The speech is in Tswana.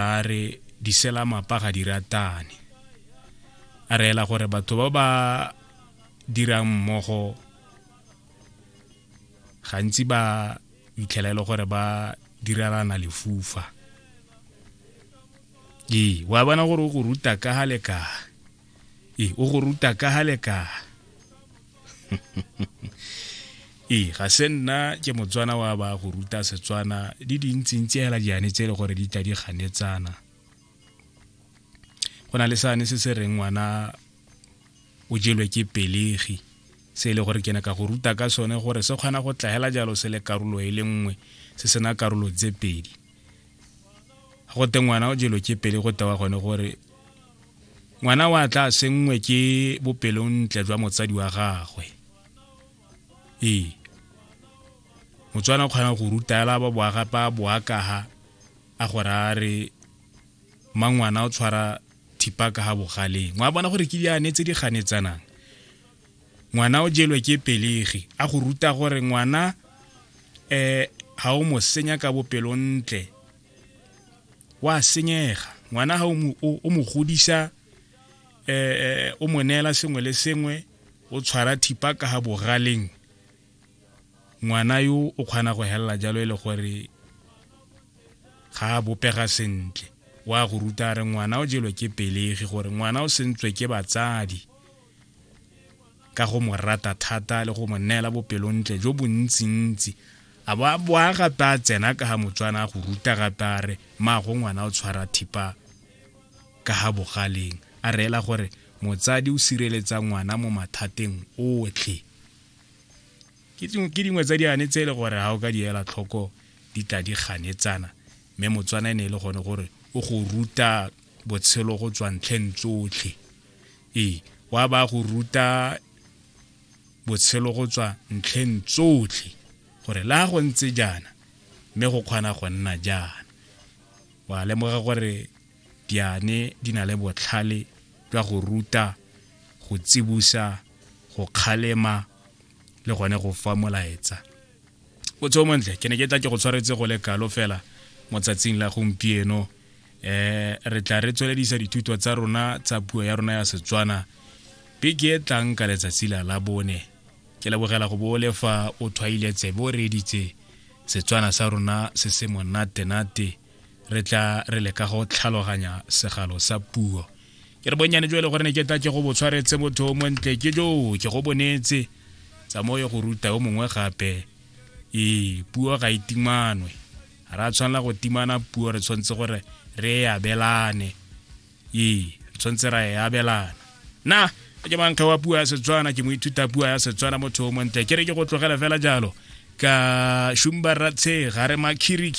a re diselamapa ga di ratane a reela gore batho ba ba dirang mmogo gantsi ba itlhela e le gore ba direlana lefufa ee wa bona gore o go ruta ka ga le ka e o go ruta ka ga lekala ee ga se nna ke motswana wa ba go ruta setswana di dintsintsi hela diane tse e le gore di tla di ganetsana go na le sane se se reng ngwana o jelwe ke pelegi se e le gore ke ne ka go ruta ka sone gore se kgona go tlagela jalo se le karolo e le nngwe se sena karolo tse pedi go te ngwana o jelo ke pele go tewa gone gore ngwana wa tla sengwe ke bopelontle jwa motsadi wa gagwe ee motswana o kgona go rutela ba boaga ba boakaga a gore a re mangwana o tshwara thipa ka ga bogaleng wa bona gore ke di a netse di ganetsanang ngwana o jelwe ke pelegi a go ruta gore ngwana um ga o mo senya ka bopelontle wa senyega ngwana ga o mo godisa um o mo neela sengwe le sengwe o tshwara thipa ka ga bogaleng ngwana yo o kgona go helela jalo e le gore ga a bopega sentle wa go ruta re ngwana o jelwe ke pelegi gore ngwana o sentswe ke batsadi ka go mo rata thata le go mo neela bopelontle jo bontsintsi a bo a bo a gape a tsena ka ga motswana a go ruta gape a re maago ngwana o tshwara thipa ka ga bogaleng a reela gore motsadi o sireletsa ngwana mo mathateng otlhe ke dingwe tsa diane tse e le gore ga o ka di ela tlhoko di tla di ganetsana mme motswana e ne e le gone gore o go ruta botshelo go tswa ntlheng tsotlhe ee wa ba go ruta botshelo go tswa ntlheng tsotlhe gore le a go ntse jaana mme go kgona go nna jaana wa lemoga gore diane di na le botlhale jwa go ruta go tsibusa go kgalema le gone go fa molaetsa o tseo montle ke ne ke tla ke go tshwaretse go le kalo fela mo tsatsing la gompieno eh re tla re tsweledisa dithuto tsa rona tsa puo ya rona ya setswana beke e tlang ka letsatsi la la bone ke lebogela go bo le fa o thwaile tsebe o reeditse setswana sa rona se se monatenate re tla re leka go tlhaloganya segalo sa puo ke re bonnyane jo e le gore ne ke tla ke go bo tshwaretse motho o montle ke joo ke go bonetse tsamaye go ruta yo mongwe gape ee puo ga e timanwe re a tshwanela go timana puo re tshwanetse gore re e abelane ee re tshwanetse ra e abelana na ke mankga wa puo ya setswana ke moithuta puo ya setswana motho o montle ke re ke go tlogele fela jalo ka shumba ratshega re makhiriki